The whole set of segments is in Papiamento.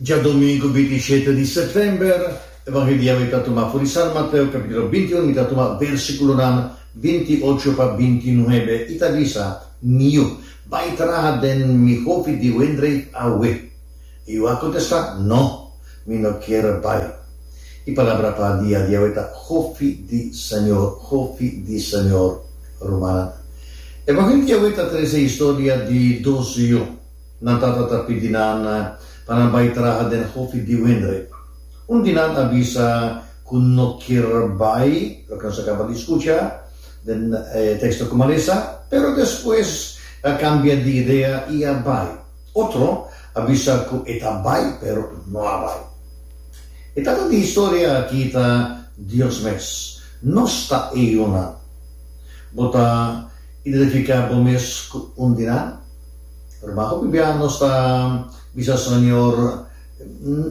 Djadomingu binti i shete di sètèmber, Evanheliu i ta tumá for di San Mateu, kapítulo binti un, mi ta tumá bèrsikulonan binti i ocho pa binti i nuebe, i ta bisa, Niu, bai traha den mi hopi di wendreit awe. I yu a kontestá, No, mi no kier bai. E palabra pa dia di awe ta hopi di Señor, hopi di Señor. Rumannan, Evanheliu di awe ta trese historia di dos yu. Nan tata ta pidi nan pa nan bai traha den Hofi di Windrip. Un di nan a bisa ku no kier bai, loke nos a kaba di skucha den e teksto ku Malesa, pero despues a kambia di idea i a bai. Otro a bisa ku e ta bai, pero no a bai. E tata di historia aki ta Dios mes. Nos ta e yunan. Bo ta identifiká bo mes ku un di nan? Pero bajo biblia nos ta bisa Señor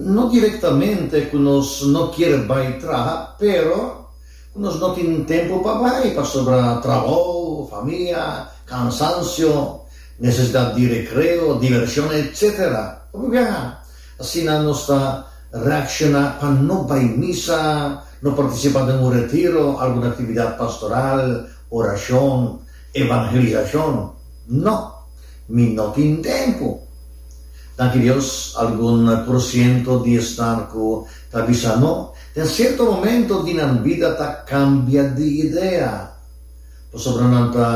no directamente cu nos no kier bay traha pero cu nos no tin tempo pa bay pasobra trabou, familia, cansancio, necesidad di recreo, diversion etc. Ora biblia a asina nos ta reacciona pa no bay misa, no participa den un retiro, algun actividad pastoral, oracion, evangelizacion. No, mi no tin tempu. Danki Dios, algun porciento di esnan cu ta bisa no, den cierto momento di nan bida ta cambia di idea, pasobra nan ta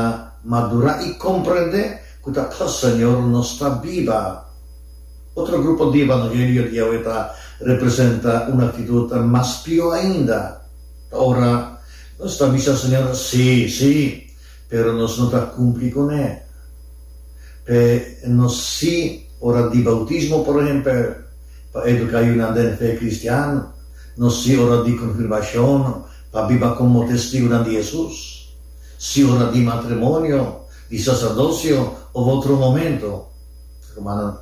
madura y comprende cu ta pa Señor nos ta biba. Otro grupo di evangelio di Yahweh ta representa un actitud mas pio ainda. Ta ora nos ta bisa Señor sí, sí. Pero nos no ta cumpli con e. P'e nos si ora di bautismo, por ehempel, pa educa yunan den fe cristiano, nos si ora di confirmacion, pa biba como Testigonan di Jesus, si ora di matrimonio, di sacerdocio of otro momento. Rumannan,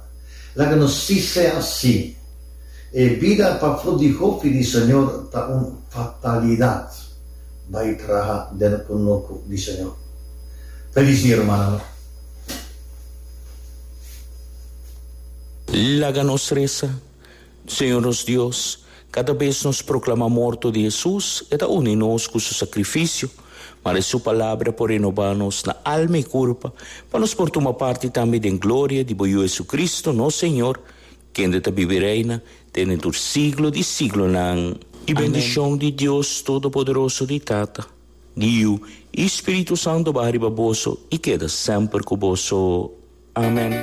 laga nos si sea si. E bida pafo di hopi di Señor ta un fatalidad. bai traha den e kunuku di Señor. Ta disi hermano. Laga nos resa. Señor nos Dios, kada bes nos proklama morto di Hesus, e ta uni nos ku su sakrifisio, ma den su palabra por renoba nos na alma i kurpa, pa nos por tuma parti tambe den gloria di bo Yu Hesukristu, nos Señor, Kende ta bibi reina dende tur siglo di siglonan. Di bendishon di Dios Todopoderoso di Tata, di Yu i Spiritu Santo baha riba boso i keda semper ku boso. Amen.